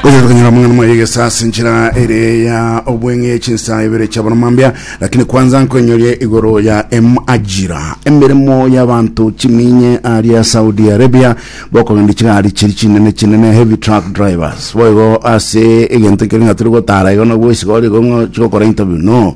Oyo tukanyora mang'ana mwa yegesa ase nchera ere ya obweng'e chinsa ibere chia bono mambia lakini kwanza nkonyorie igoro ya emajira emeremo y'abantu chiminye aria Saudi Arabia bokogenda chigari chiri chinene chinene heavy truck drivers boigo ase egento ekere ng'a turi gotara igo nabwo isigori igo ng'o chigokora interview no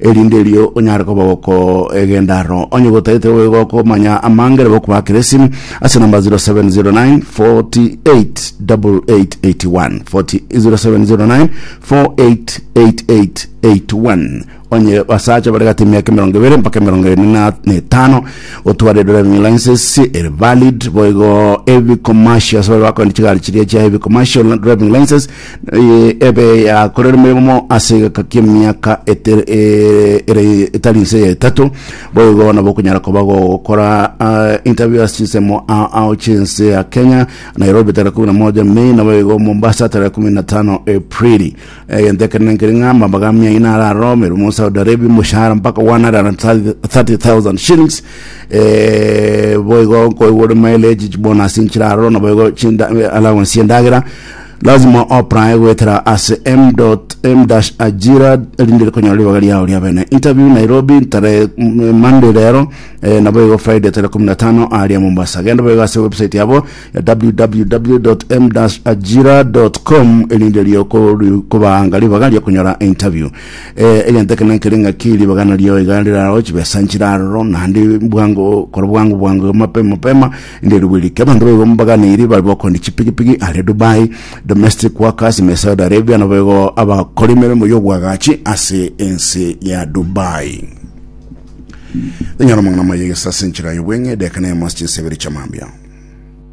erinde erio onyare koba gokoegenda aro onye gotagete gokomanya amangere bokobakiresi ase namba 0709 48 8881 0709 488881 onye basacha bari gati emiaka emerongo ebere mpaka emerongo ere na etano otware driving license ere valid boigo heavy commercial ase bari bakoenda chigari chiria chia heavy commercial driving license Eye ebe yakorire emeremo ase egeka ki'emiaka eter- e- ere etari nse ya etato boigo nabo okonyara koba gokora ah, interview ase chinsemo ao ao chinse ya kenya nairobi tarehe kumi na moja mei naboigo mombasa tarehe kumi na tano aprili egento ekenene nkeri ng'a amambaga amia ina araro emeremo saudi arabia omoshahara mpaka 130,000 shillings eh, boigo nkoigwa ore mileage chibonus nchiraro naboigo chinda allowance y'endagera Lazima oapply goetera ase m.m-ajira erinde konyora ribaga riao ria bene. Interview Nairobi tare mm, Monday rero eh, nabo igo Friday tare kumi na tano aria Mombasa. Genda boigo ase website yabo ya www.m-ajira.com erinde rio kori- kobaanga ribaga ria konyora interview. Eh, egento ekene nkere ng'aki ribaga nario iga rirao chibesa nchiraroro naende bwango kora bwango bwango mapema mapema Riria ribuya rikia abanto baigo mbaganeiri babe bakondi chipigipigi are Dubai, domestic workers ime Saudi Arabia nabo igo abakora emeremo y'obwagachi ase ense ya Dubai. Tonyora amang'ana amaya egesa ase enchera y'obweng'e, edeka na eyemo ase chinsa ibere chiamambia.